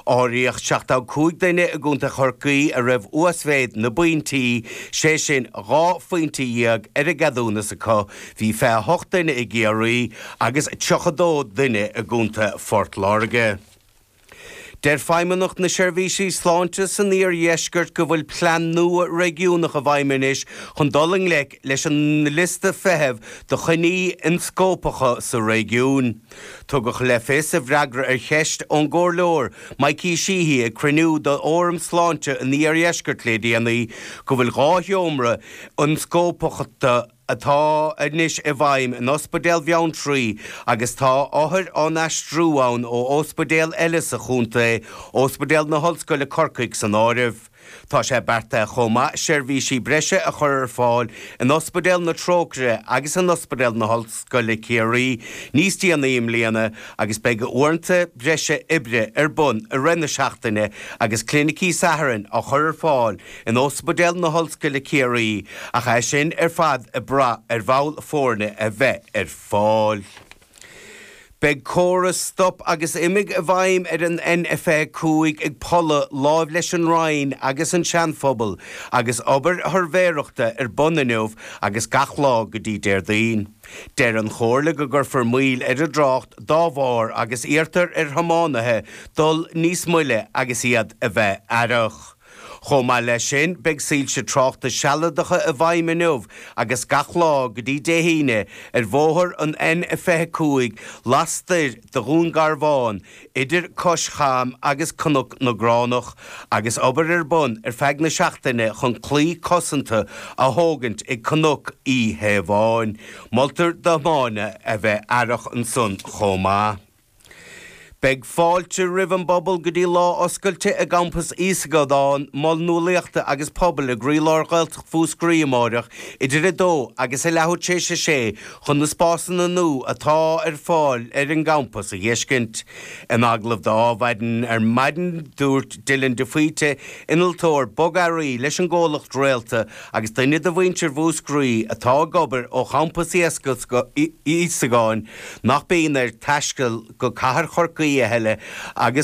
Áiríodh 75 duine i gContae Chorcaí a raibh uasmhéid na bpointí, sé sin dhá phointe dhéag ar an gceadúnas acu, bhí 28 duine i gCiarraí agus 32 duine i gContae Phort Láirge. Deir Feidhmeannacht na Seirbhísí Sláinte san Iardheisceart go bhfuil plean nua réigiúnach i bhfeidhm anois chun dul i ngleic leis an liosta feithimh do choinní ionscópacha sa réigiún. Tugadh le fios i bhfreagra ar cheist ón gComhairleoir Mikey Sheehy ag cruinniú do Fhóram Sláinte an Iardheiscirt le déanaí go bhfuil dhá sheomra ionscópachta atá anois i bhfeidhm in Ospidéal Bheanntraí agus tá othair á n-aistriú ann ó ospidéil eile sa chontae, Ospidéal na hOllscoile Corcaigh san áireamh. Tá sé beartaithe chomh maith seirbhísí breise a chur ar fáil in Ospidéal na Trócaire agus in Ospidéal na hOllscoile Ciarraí níos déanaí i mbliana agus beidh uaireanta breise oibre ar bun i rith na seachtaine agus clinicí Sathairn á chur ar fáil in Ospidéal na hOllscoile Ciarraí ach é sin ar fad ag brath ar bhall foirne a bheith ar fáil. Beidh córas stop agus imigh i bhfeidhm ar an N25 ag Pulla láimh leis an Rinn agus an Seanphobal agus obair shuirbhéireachta ar bun inniu agus gach lá go dtí Déardaoin. Deir an Chomhairle go gcuirfear moill ar an dtrácht dá bharr agus iarrtar ar thiománaithe dul níos moille agus iad a bheith aireach. Chomh maith leis sin, beidh soilse tráchta sealadacha i bhfeidhm inniu agus gach lá go dtí Dé hAoine ar bhóthar an N25 lastoir de Dhún Garbhán idir Cois Cham agus Cnoc na gCránach agus obair ar bun ar feadh na seachtaine chun claí cosanta a thógaint ag Cnoc Uí Thaobháin. Moltar do thiománaithe a bheith aireach ansan chomh maith. Beidh fáilte roimh an bpobal go dtí lá oscailte i gCampas Íosagáin, Mol Nualaíochta agus Pobail i gcroílár Ghaeltacht Mhúscraí amáireach idir a dó agus a leathuair tar éis a sé chun na spásanna nua atá ar fáil ar an gcampas a dh'fheiscint. In agallamh do Adhmhaidin ar maidin dúirt Dylan de Faoite, Innealtóir Bogearraí leis an gcomhlacht Réalta agus duine de mhuintir Mhúscraí atá ag obair ó Champas Íosagáin, nach mbíonn air taisteal go cathair Chorcaí a thuilleadh agus.